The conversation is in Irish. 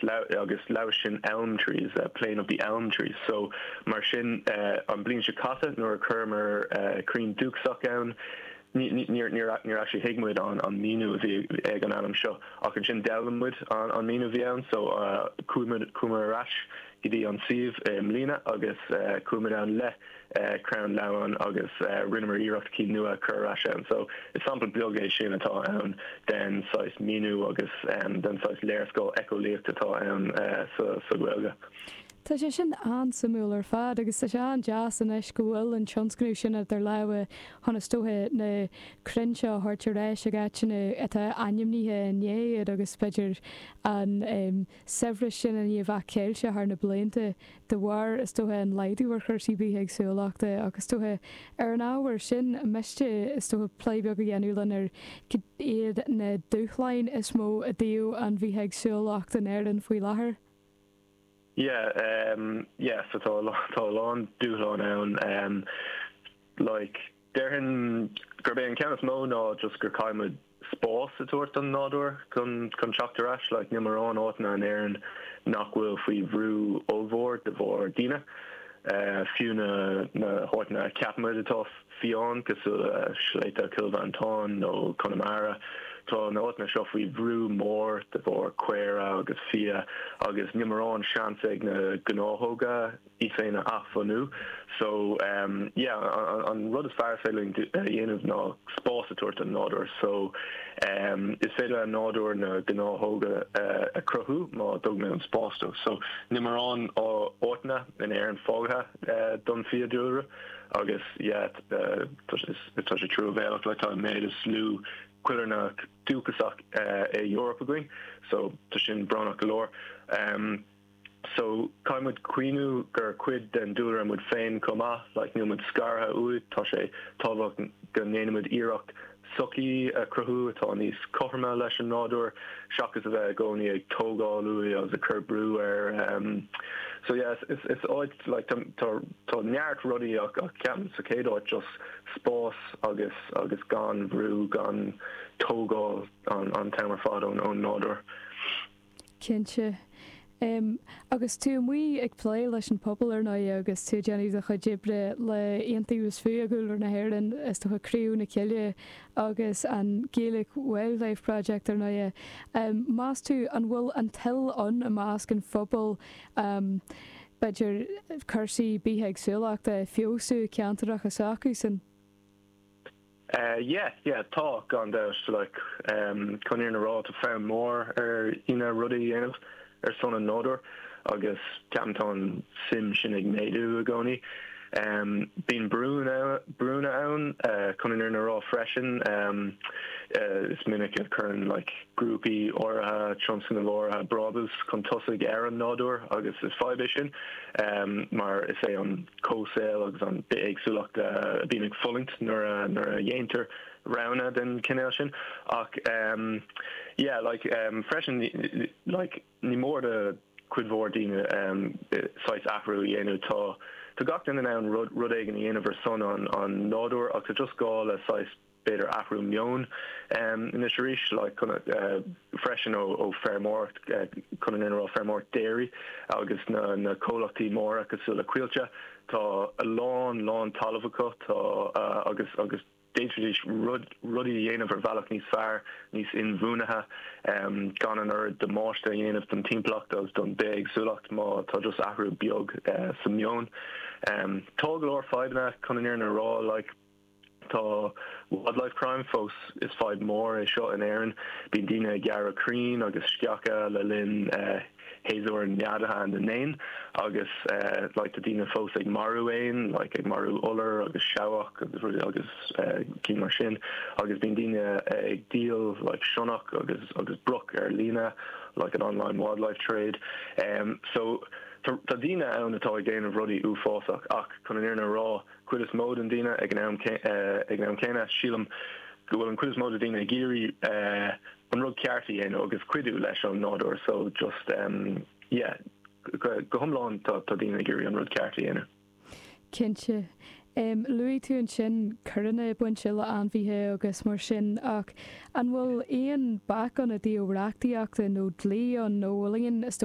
Leamh, Agus leamh sin elm trees, plain of the elm trees. So, mar sin, an bliain seo caite nuair a chuireamar crainn dúchasach ann, ní, níor actually thuig muid an an míniú a bhí ag an ainm seo ach ansin d'fhoghlaim muid an an míniú a bhí ann so chuaigh muid, chuamar ar ais go dtí an suíomh i mbliana agus chuaigh muid ann le crainn leamháin agus rinneamar iarracht cinn nua a chur ar ais ann. So is sampla beag é sin atá ann den saghas míniú agus den saghas léarscáil eiceolaíocht atá ann sa Ghaeilge. Tá sé sin an-suimiúil ar fad agus tá sé an-deas anois go bhfuil an tionscnamh seo idir lámha chun is dócha na crainn seo a thabhairt ar ais ag áiteanna atá ainmnithe ina ndiaidh agus b'fhéidir an saibhreas sin a bheith caillte thar na blianta de bharr is dócha an laghdú ar chúrsaí bithéagsúlachta ach is dócha ar an ábhar sin ar mhiste is dócha plé beag a dhéanamh linn ar cad iad na dúshláin is mó i dtaobh an bhithéagsúlacht in Éirinn faoi láthair. Yeah yeah so tá a lán dúshlán ann like. Déarfainn gurb é an ceann is mó ná just go gcaithfidh muid spás a tabhairt don nádúr chun teacht ar ais. Like, níl mórán áiteanna in Éirinn nach bhfuil faoi bhrú ollmhór de bharr daoine. Fiú na na háiteanna a cheapann muid atá fiáin, cosúil le Sléibhte Chill Mhantáin nó Conamara, tá na áiteanna seo faoi bhrú mór de bharr caora agus fia agus níl mórán seans ag na gnáthóga. iad féin a athbhunú. So yeah an rud is fearr is féidir linn a dhéanamh ná spás a tabhairt don nádúr. So is féidir leis an nádúr na gnáthóga a chruthú má dtugann muid an spás dó. So níl mórán áiteanna in Éirinn fágtha don fiadhúlra agus yeah tá sé truamhéalach like tá an méid is lú coillearnach dúchasach san Eoraip againn so tá sin brónach go leor. so caithfidh muid cuimhniú gur cuid den dúlra muid féin chomh maith, like níl muid scartha uaidh, tá sé tábhachtach go ndéanaimid iarracht sochaí a chruthú atá níos cothroime leis an nádúr seachas a bheith i gcónaí ag tógáil uaidh agus ag cur brú air em so yeah is áit like tá tá neart rudaí ach ceapaim sa chéad áit just spás agus agus gan bhrú gan tógáil an t-am ar fad ón nádúr. Cinnte. Em, agus tú amuigh ag plé leis an pobal, ar ndóighe, agus tú ag déanamh do chuid oibre le Iontaobhas Fiadhúlra na hÉireann is do chuid Criú na Coille agus an Gaelic Wildlife Project, ar ndóighe. Em, meas tú an bhfuil an toil ann i measc an phobail, em, b'fhéidir cúrsaí bithéagsúlachta a fheabhsú i gceantracha s'acusan? Yes, yeah, Tá, gan dabht, like, em, chun an fhírinne a rá, tá fonn mór ar dhaoine rudaí a dhéanamh ar son an nádúir agus ceapaim tá an suim sin ag méadú i gcónaí. Em, bíonn brúnna, brúnna ann, eh, chun an fhírinne a rá freisin, em, eh, is minic a cuireann, like, grúpaí áirithe, tionscnaimh áirithe brábús chun tosaigh ar an nádúir agus is fadhb é sin, em, mar is é an. comhshaol agus an bithéagsúlacht a bhíonn ag fulaingt nuair a dhéantar roghanna den chinéal sin ach yeah like freisin like ní mór do chuid mhór daoine saghas athrú a dhéanamh tá tá gach duine in ann rud rud éigin a dhéanamh ar son an an nádúir ach tá just gá le saghas b'fhéidir athrú meoin anois arís freisin ó feirmeoireacht chun an fhírinne a rá feirmeoireacht déirí agus na na comhlachtaí móra cosúil le Coillte tá a lán lán talamh acu tá agus agus d'fhéadfaidís rud rudaí a dhéanamh ar bhealach níos fearr níos inbhuanaithe gan an oiread damáiste a dhéanamh don timpeallacht agus don bithéagsúlacht má tá just athrú beag sa meon tá go leor fadhbanna chun an fhírinne a rá like Tá wildlife crime fós, is fadhb mór é seo in Éirinn. Bíonn daoine ag gearradh crainn agus sceacha le linn shéasúr neadaithe na n-éan agus like tá daoine fós ag marú éan like ag marú iolar agus seabhac agus cinn mar sin agus bíonn daoine ag díol like sionnach agus agus broc ar líne like an online wildlife trade em so tá daoine ann atá ag déanamh rudaí uafásach ach chun an fhírinne a rá chuid is mó de na daoine ag an am ag an am céanna. Sílim go bhfuil an chuid is mó de na daoine ag iarraidh an rud ceart a dhéanamh agus cuidiú leis an nádúr so just yeah go hiomlán tá tá daoine ag iarraidh an rud ceart a dhéanamh. Cinnte. Luaigh tú ansin coireanna bainte le ainmhithe agus mar sin ach an bhfuil aon bac ann i dtaobh reachtaíochta nó dlí ann nó bhfuil aon is dócha